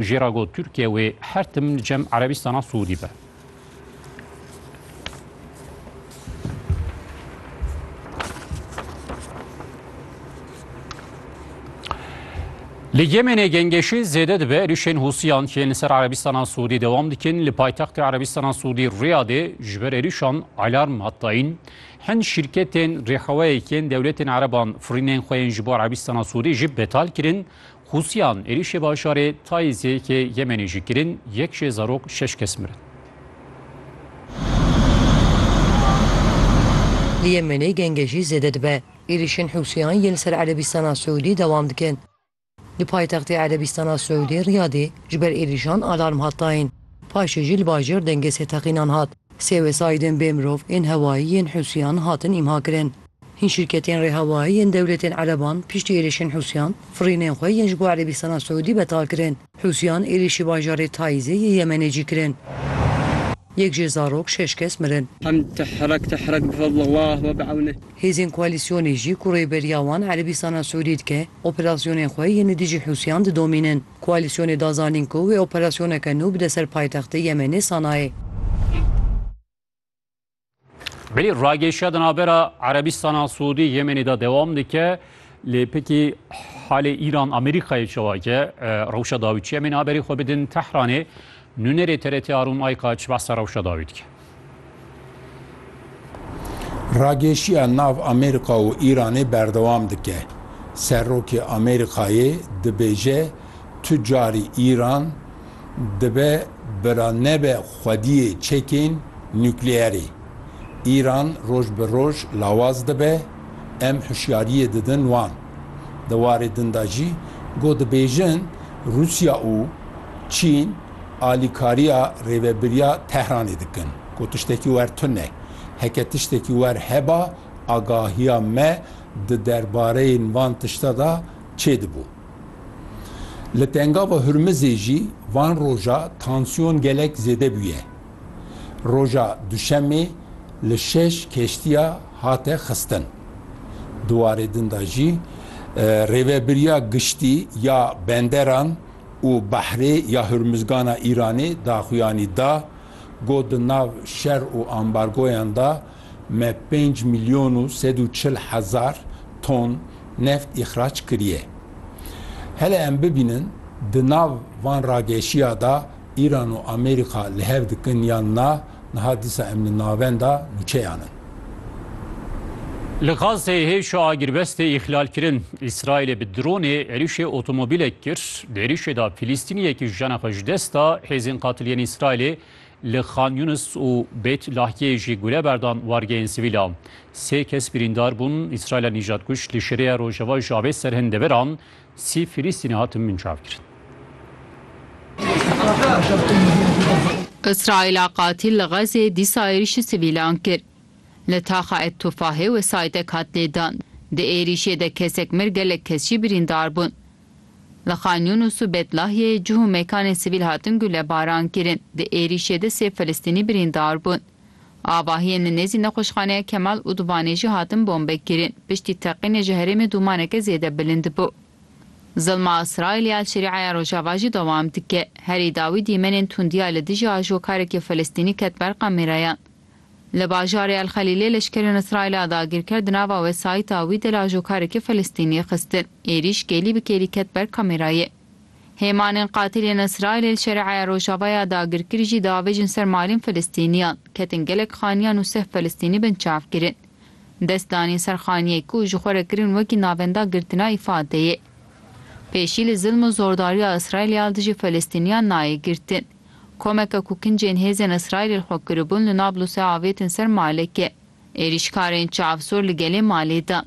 Jê ra got Tirkiye wê her tim li cem Erebîstana Siûdî be. Li Yemenê gengêşî zêde dibe êrîşên Hûsiyan yên li ser Erebîstana Siûdî dewam dikin. Li paytextê Erebîstana Siûdî Riyadê ji ber êrîşan alarm hat dayîn. Hin şîrketên rêxewayekên dewletên Ereban firînên xwe yên ji bo Erebîstana Siûdî jî betal kirin Hûsiyan êrîşê bajarê Taîzê yê Yemenê jî kirin, yek jê zarok şeş kes mirin. Li Yemenê genge jî zêde dibe. Êrîşên Hûsiyan yên li ser Erebîstana Siûdî dewam dikin. Di paytextê Erebîstana Siûdî Riyadê ji ber êrîşan alarm hat dayîn. Paşê jî li bajêr dengê sêteqînan hat. Sê wesaîdên bêmirov ên hewayî yên Hûsiyan hatin îmhakirin. Hin şîrketên rêhewayî yên dewletên ereban piştî êrişên Hûsiyan firînên xwe yên ji bo Erebîstana Siûdî betal kirin. Hûsiyan êrişî bajarê Taîzê yê Yemenê jî kirin. Yek jê zarok şeş kes mirin. Hêzên koalîsyonê jî ku rêberiya wan Erebîstana Siûdî dike, operasyonên xwe yên li dijî Hûsiyan didomînin. Koalîsyonê da zanîn ku wê operasyoneke nû bide ser paytextê Yemenê Sanayê. Belê ragêşiya di navbera Erebîstana Siûdî Yemenê de dewam dike. Lê pekî halê Îran Amerîkayê çewake rewşa dawî çi Yemenê haberê xwe bidin Tehranê nûnerê TRT Arûn Ayka çi behsa rewşa dawî dike. Ragêşiya nav Amerîka û Îranê berdewam dike. Serokê Amerîkayê dibêje Tu carî Îran dibe bira nebe xwediyê çekên nukleerê. Îran roj bi roj lawaz dibe, em hişyariyê didin wan. Di warê din de jî ku dibêjin Rûsya û Çîn alîkariya rêvebiriya Tehranê dikin ku tiştekî wer tune. Heke tiştekî wer heba agahiya me di derbareyên van tişte de çêdibû. Li Tengava Hurmizê jî van roja tansiyon gelek zêde bûye. Roja Duşemê li şeş keştiya hate xistin. Di warê din de jî Rêvebiriya Giştî ya Benderan û Behrê ya Hurmizgana Îranê daxuyanî da, got di nav şer û ambargoyan de, Me pênc milyon û sed û çil hezar ton neft îxrac kiriye. Hele em bibînin di nav van rageşiya de Îran û Amerîka li hev dikin yan na, niha dîsa em li navenda nûçeyan in. Li Gazeyê hêşa agirbestê îxlal kirin. Îsraîlê bi dronê êrîşê otomobîlek kir. Di êrîşê de Filîstîniyekî jena xwe ji dest da. Hêzên qatiliyên Îsraîlê Li Xan Yunis û Bêt Lahyiyê jî gule berdan wargehên sivîlan. Sê kes birîndar bûn, Îsraîla nîjadkuj li şerêya rojava ji avê ser hin deveran sî Filîstînî hatin binçavkirin. Îsraîla qatîl li Xezê dîsa êrîşî sivîlan kir. Li taxa Et Tufahê wesayîtek hat lêdan. Di êrîşê de kesek mir gelek kes jî birîndar bûn. Li Xan Yûnûs û Betlahyeyê cih û mêkanên sivîl hatin gulebarankirin, di êrîşê de sê Filistînî birîndar bûn. Avahiyên li nêzî nexweşxaneya Kemal Udvanê jî hatin bombekirin, piştî teqînê ji herêmê dûmaneke zêde bilind bû. Zilma Îsraîlê ya Şerîeya Rojava jî dewam dike. Herî dawî dîmenên tundiya li dijî ajokarekî Filistînî ket ber kamerayan. Li bajarê El Xelîlê leşkerên Îsraîla dagîrker di nava wesayîta wî de lajokarekî Filistînî xistin. Êrîş kêlî bi kêlî ket ber kamerayê. Hêmanên qatilên Îsraîlê li Şere'eya Rojava ya dagirkir jî diavêjin ser malên Filistîniyan. Ketin gelek xaniyan û seh Filistînî binçav kirin. Dest danîn ser xaniyek ku ji xwe re kirin wekî navenda girtina îfadeyê. Pêşî li zilm û zordariya Îsraîlê ya dijî Filistîniyan nayê girtin. Komeke ku kincên hêzên Îsraîlê li xwe kiribûn li Nablusê avêtin ser malekê. Êrîşkarên çav sor li gelê malê dan.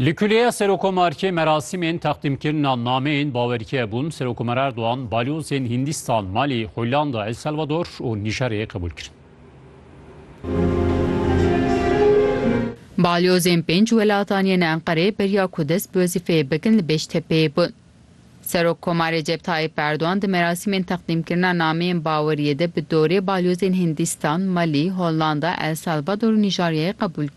Li Kuleya Serokomarkê merasîmên teqdîmkirina nameyên bawerkê bûn. Serokomer Erdogan balyozên Hindîstan, Malî, Hollanda, El Salvador û Nîjerê qebûl kirin. Balyozên pênc welatan yên Enqereyê beriya ku dest bi wezîfeyê bikin li Bêştepeyê bûn. Serokkomar Recep Tayyîp Erdogan di merasîmên teqdîmkirina nameyên baweriyê de bi dorê balyozên Hindîstan, Malî, Hollanda, El Salvador û Nîjaryayê qebûl kir.